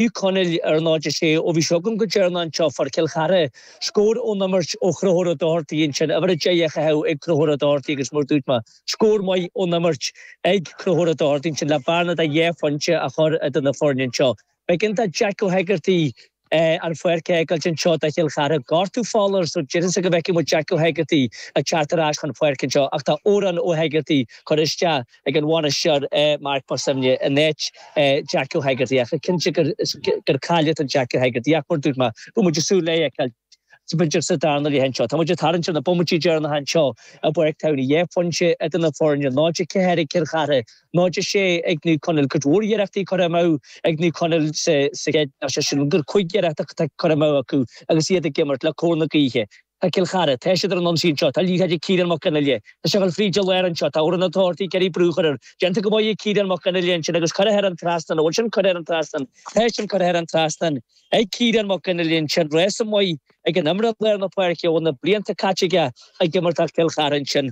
Naomh Conaill ar 0-6, ó bhí sibh agam go deireanach anseo, fuair Cill Chartha scór ón imirt ó Chonchúr Ó Dochartaigh ansin, uimhir 10 á chaitheamh ag Conchúr Ó Dochartaigh agus mar dúirt mé, scór maith ón imirt ag Conchúr Ó Dochartaigh ansin le bearna de dhá phointe a chur idir na foirne anseo. B'éigean do Jack Ó hEigeartaigh an pháirc a fhágáilt anseo do Chill Chartha. Gortú fola air so d'fhéadfadh go bhfeicfidh muid Jack Ó hEigeartaigh ag teacht ar ais chun páirce anseo ach tá Odhrán Ó hEigeartaigh curtha isteach, ag an bhainisteoir Mark Mac Suibhne in áit Jack Ó hEigeartaigh, ach is cinnte gur cailliúint é Jack Ó hEigeartaigh, ach mar dúirt mé, beidh muid ag súil le é a fheiceáil sa darna leath anseo. Tá muid ag tarraingt ar na bomaití deireanacha anseo i bPáirc Tamhnaigh, dhá phointe idir na foirne, 0-4 ag Cill Chartha, 0-6 ag Naomh Conaill. Cuid mhór iarrachtaí curtha amú ag Naomh Conaill sa gcéad leath, sé sin, gur cúig iarracht atá curtha amú acu agus iad ag imirt le cóir na gaoithe. Tá Cill Chartha, tá siad ar an ionsaí anseo, tá an liathróid ag Ciarán Mac Fhionnghaile, tá sé ag gabháil fríd an lár anseo, tá Odhrán Ó Dochartaigh ag iarraidh brú a chur air, déanta go maith ag Ciarán Mac Fhionnghaile ansin agus curtha thar an trasnán, an bhfuil sin curtha thar an trasnán? Tá sin curtha thar an trasnán ag Ciarán Mac Fhionnghaile ansin, rása maith ag an imreoir lár na páirce a bhfuil na blianta caite aige ag imirt ag Cill Chartha ansin.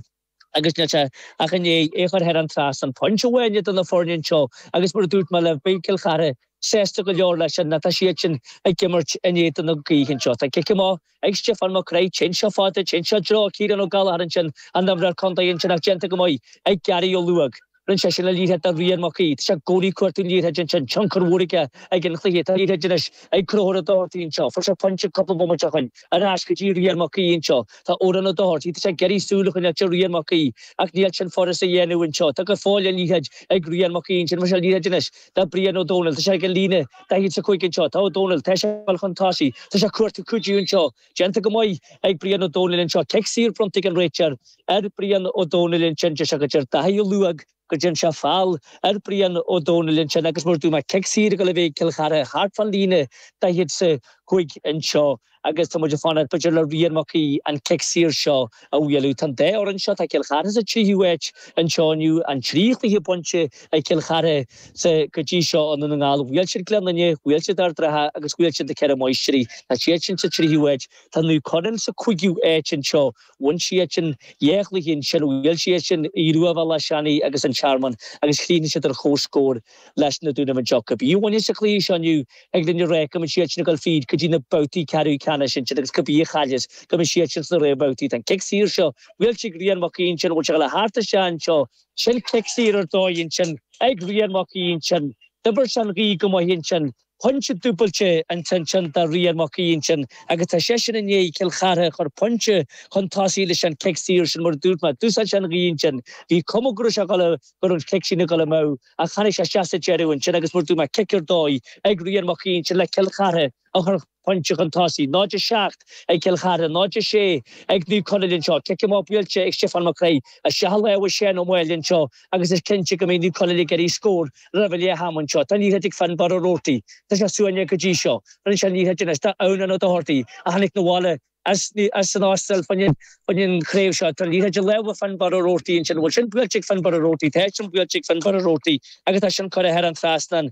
agus níl sé ach i ndiaidh é a chur thar an trasnán. Pointe amháin idir na foirne anseo agus mar a dúirt mé libh, beidh Cill Chartha sásta go leor leis sin nó tá siad sin ag imirt in éadan na gaoithe anseo. Tá cic amach ag Stiofán Mac Craith, téann sé fada, téann sé i dtreo Ciarán Ó Gallchóir ansin, an t-imreoir contae ansin ach déanta go maith ag Gary Ó Luaigh. Rinne sé sin an liathróid do Rian Mac Aoidh. Tá sé i gcónaí ag cuartú liathróid ansin, tionchar mhór aige ag an chluiche. Tá liathróid anois ag Conchúr Ó Dochartaigh anseo. Fuair sé pointe cúpla bomaite ó shin, ar ais go dtí Rian Mac Aoidh anseo. Tá Odhrán Ó Dochartaigh, tá sé ag iarraidh súil a choinneáil ar Rian Mac Aoidh ach níl sin furast a dhéanamh anseo. Tá go fóill an liathróid ag Rian Mac Aoidh ansin. Bheir sé an liathróid anois do Brian Ó Dónaill. Tá sé ag an líne 45 anseo. Tá Ó Dónaill, tá sé ag dul chun tosaigh. Tá sé ag cuartú cuidiú anseo Déanta go maith ag Brian Ó Domhnaill anseo. Cic saor bronnta ag an réiteoir ar Brian Ó Domhnaill ansin deir sé go dtearn Daithí Ó Luaigh, go dtearn sé feall ar Brian Ó Domhnaill ansin agus mar a dúirt mé cic saor ag dul a bheith ag Cill Chartha thart fan líne 45 anseo agus tá muid ag fanacht b'fhéidir le Rian Mac Aoidh an cic saor seo a bhualadh. Tá an dá fhoireann seo, tá Cill Chartha sa tríú áit anseo inniu, an trí chluiche bainte ag Cill Chartha sa go dtí seo i nDún na nGall. Bhuail siad Gleann Fhinne, bhuail siad Ardratha agus bhuail siad Na Ceithre Máistrí. Tá siad sin sa tríú áit. Tá Naomh Conaill sa cúigiú áit anseo. Bhain siad sin dhá chluiche ansin. Bhuail siad sin Aodh Rua Bhéal Átha Seanaidh agus An Tearmann agus chríochnaigh siad ar chomhscór. leis na Dúnaibh anseo. Cibé a bhaineas an cluiche seo inniu thig linn a ráit go mbeidh siad sin ag dul fríd go dtí na babhtaí ceathrú ceannais ansin agus cibé a chailleas go mbeidh siad sin sna réamhbhabhtaí. Tá an cic saor seo buailte ag Rian Mac Aoidh ansin, an bhfuil sé ag gabháil thar an trasnán anseo, sin cic saor ar dóigh ansin ag Rian Mac Aoidh ansin, d'oibir sé an ghaoth go maith ansin Pointe dúbailte an tinteáin do Rian Mac Aodha ansin agus tá seisean i ndiaidh Cill Chartha a chur pointe chun tosaigh leis an chic saor sin. Mar a dúirt mé, d'úsáid sé an ghaoth ansin. Bhí cuma go raibh sé a dhul a go raibh an chic sin a dhul amú ach tháinig sé isteach sa deireadh ansin agus mar a dúirt mé, cic ar dóigh ag Rian Mac Aodha ansin le Cill Chartha a chur pointe chun tosaigh. 0-7 ag Cill Chartha, 0-6 ag Naomh Conaill anseo. Cic amach buailte ag Stiofán Mac Craith, isteach i lámha Séan Ó Maoil anseo agus is cinnte go mbeidh New Colony ag éirí scór roimh an leath ama anseo. Tá Ní ag fearann barra Roarty. Tá sé suaite go dtí seo. Rinne sé Ní anois. Tá Ann in O'Doherty, a tháinig 'na bhaile as an Astráil chun an chraobh seo. Tá Ní de láimh ag fearann barra Roarty ansin. An bhfuil sin buailte ag fearann barra Roarty? Tá sin buailte ag fearann barra Roarty agus tá sin curtha thar an trasnán.